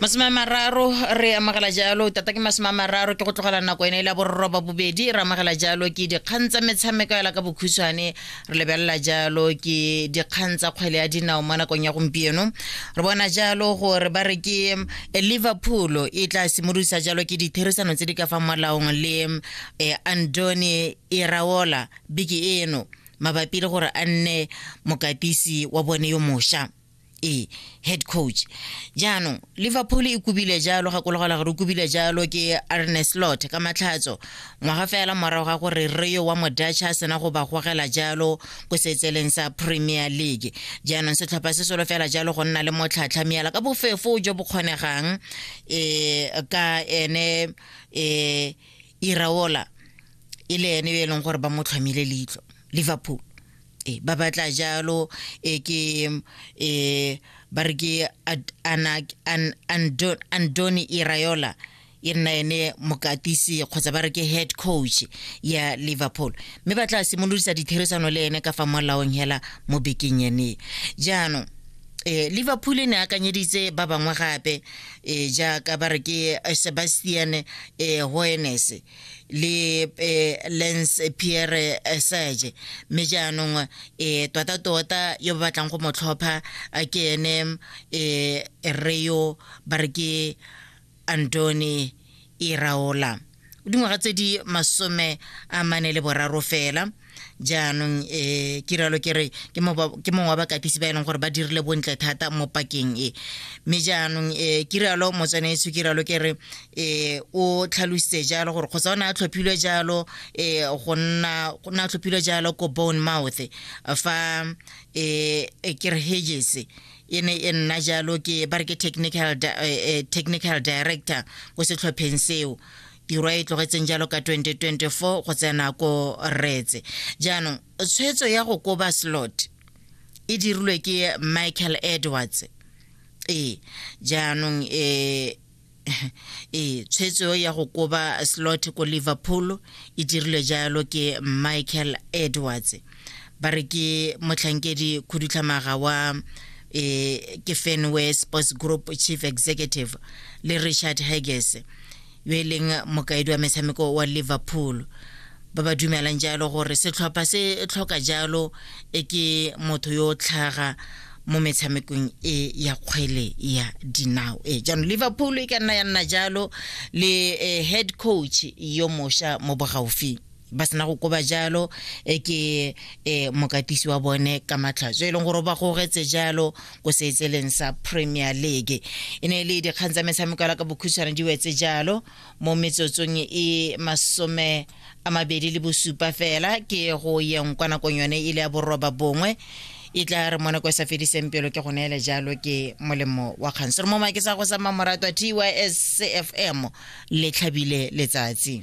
masome a mararo re amogela jalo tata ke masome a mararo ke go tlogela nako ene e la bororoba bobedi re amogela jalo ke dikgang tsa metshameko ela ka bokhutshwane re lebelela jalo ke dikgang tsa kgwele ya dinao mo nakong ya gompieno re bona jalo gore ba re ke eh, liverpool e tla simolosa jalo ke ditherisano tse di ka fa molaong le eh, andoni iraola biki eno mabapi le gore a nne mokatisi wa bone yo mošwa e head coach jaanong liverpool e kubile jalo ga kologela gore o kubile jalo ke arne slot ka matlhatso ngwaga fela morago ga gore rio wa modutch a sena go ba gogela jalo ko setseleng sa premier league jaanong setlhopha se solo fela jalo go nna le motlhatlhamiela ka bofefo jo bo kgonegang um ka ene um iraola e le ene e leng gore ba mo tlhomile leitlho liverpool e ba batla jalo e ke e ba re ke andoni iraola e nna ene mokatisi kgotsa ba re ke head coach ya liverpool mme ba tla simolodisa ditherisano le ene ka fa molaong hela mo bekeng ene jaanong eh liverpool e ne akanyeditse ba bangwe gape e jaaka ba re ke eh, sebastian e eh, hoenes le eh, lens pierre serge mme jaanong um tota tota yo ba batlang go mo tlhopha ke ene um reo ba re ke antony iraola e dingwaga tse di masome a mane le boraro fela jaanong um eh, ke rialo ke re ke mongwe wa bakatisi ba e leng gore ba dirile bontle thata mo pakeng e mme jaanong um eh, ke rialo motswaneetso ke rialo ke re um o tlhalositse jalo gore kgotsa o ne a tlhophilwe jalo um go nna o ne a tlhophilwe jalo ko bone mouth fa um ke re hedges e ne e nna jalo ke ba re ke technical, di eh, eh, technical director ko setlhopheng seo tiro e tlogetseng jalo ka 2024 go tsena ko retse jaanong tshwetso ya go koba slot e dirilwe ke michael edwards ee jaanong um ee tshwetso ya go koba slot ko liverpool e dirilwe jalo ke michael edwards ba re ke motlhankedi khudutlhamaga wa e ke fenway sports group chief executive le richard hages yo e leng mokaedi wa metshameko wa liverpool ba ba dumelang jalo gore setlhopha se tlhoka jalo e ke motho yo tlhaga mo metshamekong e ya kgwele ya dinao e jaanong liverpool e ka nna ya nna jalo le eh, head coach yo mosha mo bogaufing ba sena go koba jalo eh, ke eh, mokatisi wa bone ka matlhatso e leng gore o ba gogetse jalo ko seetseleng sa premier league e ne e le dikgang tsa metshameko ya la ka bokhutshwane di wetse jalo mo metsotsong e masome a mabedi le bosupa fela ke go yeng kwa nakong yone e le ya boroba bongwe e tla re mo nako e sa fediseng pelo ke go neele jalo ke molemo wa kgang sere mo make sa go sa mamoratwa tys cfm le tlhabile letsatsi